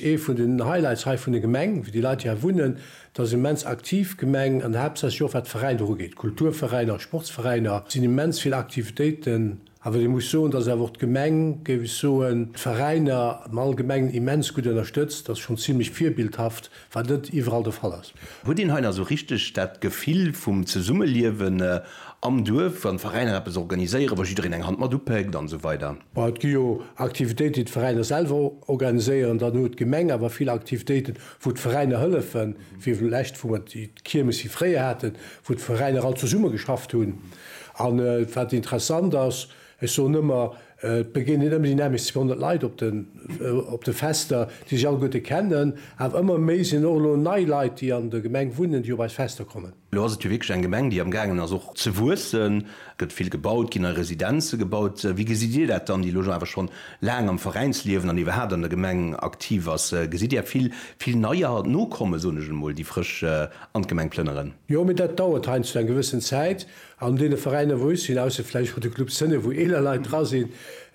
Ee vun den Highlights hei vun der Gemeng, wéi déi Leit déi hei wunnen, dat ass immens aktiv Gemeng an haaptsächlech och wat d'Veräiner ugeet, Kulturveräiner a Sportsveräiner. Et sinn immens vill Aktivitéiten. Awer ee muss soen, dass awer och d'Gemeng, géif ech soen, d'Veräiner am Allgemengen immens gutt ënnerstëtzt. Dat ass schonn zimlech virbildhaft, wat net iwwerall de Fall ass. Huet een hei nach esou richteg dat Gefill vum Zesummeliewen am Duerf, wann d'Veräiner eppes organiséieren, wa jiddereen eng Hand mat upéckt an esou weider? Bon, et gi jo Aktivitéiten, déi d'Veräiner selwer organiséieren, dann huet d'Gemeng awer vill Aktivitéiten, wou d'Veräiner hëllefen, wéi vlächtt wou mer déi Kiermes hir fréier haten, wou d'Veräiner all zesumme geschafft hunn. An wat interessant ass, Ech soen ëmmer, et begéinen ëmmer déi nämlecht 200 Leit op de Fester, déi sech alleguerte kennen. Awer ëmmer méi sinn och elo nei Leit, déi an der Gemeng wunnen, déi op eis Fester kommen. Elo ass et jo wierklech eng Gemeng, déi am gaangen ass och ze wuessen. Et gëtt vill gebaut, ginn nei Residenze gebaut. Wéi gesitt Dir dat dann, déi elo awer schonn laang am Veräinsliewen an iwwerhaapt an der Gemeng aktiv ass? Gesitt Dir vill, vill Neier nokommen, soen ech emol, déi frësch an d'Gemeng plënneren? Jo, mee dat dauert heiansdo eng gewëssen Zäit. An deene Veräiner wou ech sinn, ausser vläicht bei de Club Scene wou eeler Leit dra sinn,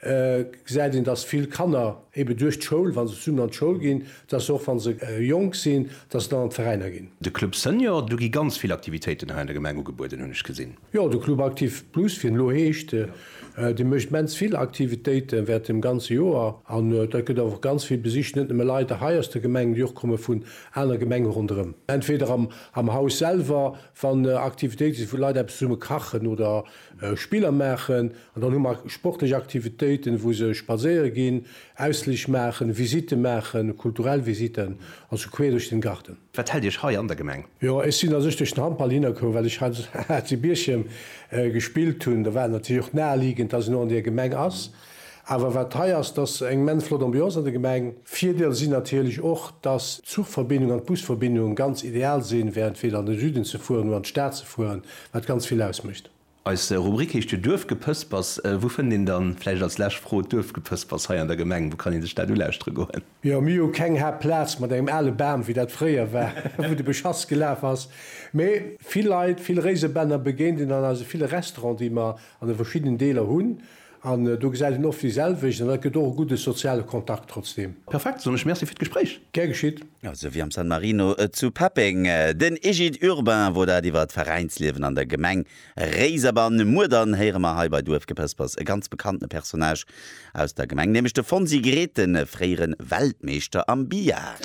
gesäit een, datt vill Kanner eben duerch d'Schoul, wa se zesummen an d'Schoul ginn, datt se och wa se jonk sinn, datt se dann an d'Veräiner ginn. De Club Senior, do gi ganz vill Aktivitéiten hei an der Gemeng ugebueden, hunn ech gesinn. Jo, de Club Actif Plus, wéi en elo heescht, dee mécht immens vill Aktivitéiten während dem ganze Joer. An dat gëtt och ganz vill besicht, net nëmme Leit hei aus der Gemeng, déi och komme vun aner Gemenge ronderëm, entweder am Haus selwer, Wann Aktivitéite si wou Leit eppes zesumme kachen oder Spiller maachen. An dann hu mer sportlech Aktivitéiten, wou se spadséiere ginn, Ausflich maachen, Visitte maachen, kulturell Visitten, also queer duerch den Garten. Wat hält Iech hei an der Gemeng? Jo, ech sinn a sech duerch den Handball hinner komm, well ech hei zu Bierchem gespillt hunn. Da war et natierlech och naheliegend, dass en och an där Gemeng ass. Awer wat hei ass, dass se eng immens flott Ambiance an der Gemeng. Virdeel si natierlech och, dass d'Zuchverbindung an d'Busverbindung ganz ideal sinn, während fir an de Süden ze fueren oder an d'Stad ze fueren, wat ganz vill ausmécht. Eis Rubrik heescht jo Duerfgepëspers. Wou fënnt een dann, vläicht als lescht Fro, d'Duerfgepëspers hei an der Gemeng? Wou kann ee sech dat ulaauschtere goen? Jo, mir hu keng Haaptplaz mat engem ale Bam, wéi dat fréier war, wou de Beschass gelaf ass. Mee vill Leit, vill Réisebänner begéint een an eise ville Restauranten, déi mer an de verschiddenen Deeler hunn. An do gesäit een oft déi selwecht, an dat gëtt och e gudde soziale Kontakt trotzdeem. Perfekt, soen ech. Merci fir d'Gespréich. Gär geschitt. Esou wéi am San Marino zu Peppeng. Den Egide Urbain wor dat iwwer d'Veräinsliewen an der Gemeng Réiserbann. Muer dann héiere mer hei bei Duerfgepëspers e ganz bekannte Personnage aus der Gemeng, nämlech de Fonsi Grethen, fréiere Weltmeeschter am Billard.